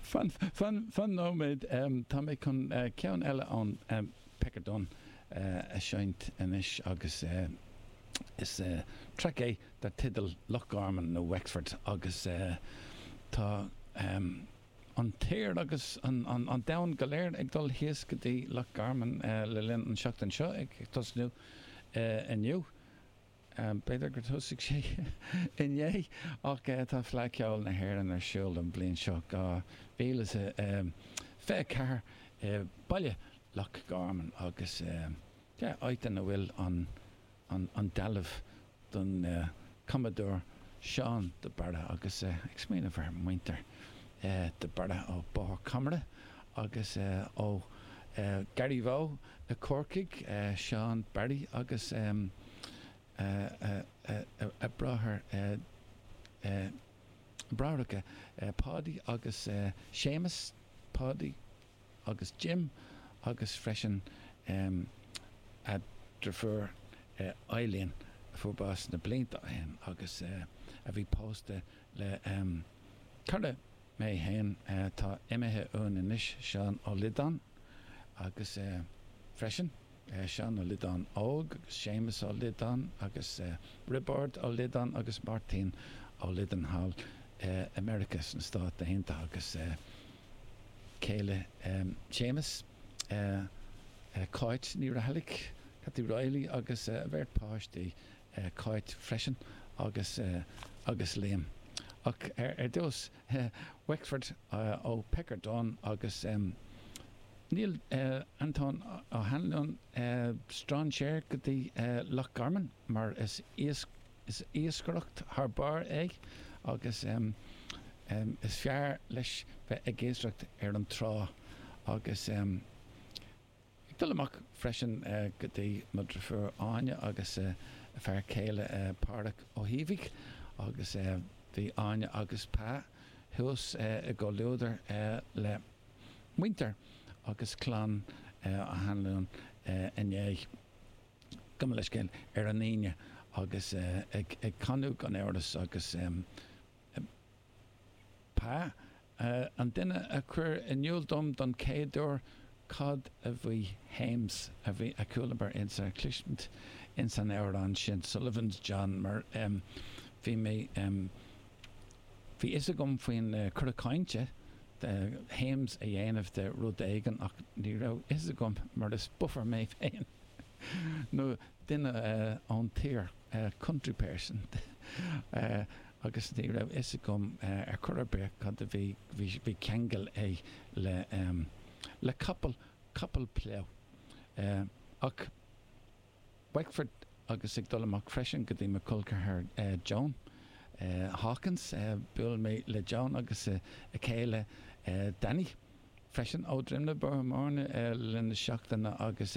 Fan nóiméad, tá mé chun ceann eile ón Pecker Dunne a seinnt anois agus is traic é dar teideal Loch Garman nó Wexford agus tá an tír agus an domhan go léir ag dul thíos go dtí Loch Garman le linn an seachtain seo ag tosnú inniu. B'fhéidir gur thosaigh sé inné, ach tá Fleadh Ceoil na hÉireann ar siúl don bhliain seo, 2024, i Baile Loch Garman agus áit ina bhfuil an dealbh don Commodore Seán de Barra agus ag smaoineamh ar mhuintir de Barra ó Bóthar Comeragh. agus ó Garryvoe i Corcaigh, Seán Barry agus a bráthair bráithreacha, Páidí agus Séamus, Páidí agus Jim, agus freisin a dheirfiúr Eileen a fuair bás na blianta ó shin agus a bhí pósta le cara mé fhéin tá imithe uainn anois, Seán Ó Liodáin agus freisin Seán Ó Liodáin Óg agus Séamus Ó Liodáin agus Roibeárd Ó Liodáin agus Máirtín Ó Liodáin thall i Meiriceá sna Stáit Aontaithe agus céile Shéamus Cáit Ní Raghallaigh, Cathy Reilly agus a bheirt páistí Cáit, freisin agus, agus Liam. Ach ar dtús, Wexford ó Pecker Dunne agus níl Antóin Ó hAnluain strainséir go dtí Loch Garman mar is iascaireacht thar barr é agus is fearr leis bheith ag iascaireacht ar an trá agus. Ag dul amach freisin go dtí mo dhriofúr Áine agus a fear céile Páraic Ó hÍbhigh agus bhí Áine agus Pa thuas i gcomhluadar le muintir agus clann Uí hAnluain inné. Gabh mo leithscéal, ar an Aoine agus ag canadh gan amhras agus. Pa, an duine a chuir in iul dom don chéad uair cad a bhí hames a bhí a chualamar ins ar chluisint ins an amhrán sin Sullivan's John mar bhí mé bhí fhios agam faoin cora cainte de hames a dhéanamh de rud éigin ach ní raibh fhios agam mar is buffer mé féin nó duine ón tír country person. agus ní raibh a fhios agam ar chor ar bith cad a bhí, bhí ceangal aige le, le capall, capall pleidh, ach Wexford agus ag dul amach freisin go dtí mo cholceathar Joan Hawkins, bhuail mé le Joan agus a chéile Danny freisin ó Droim na Boithmhairne i lár na seachtaine agus.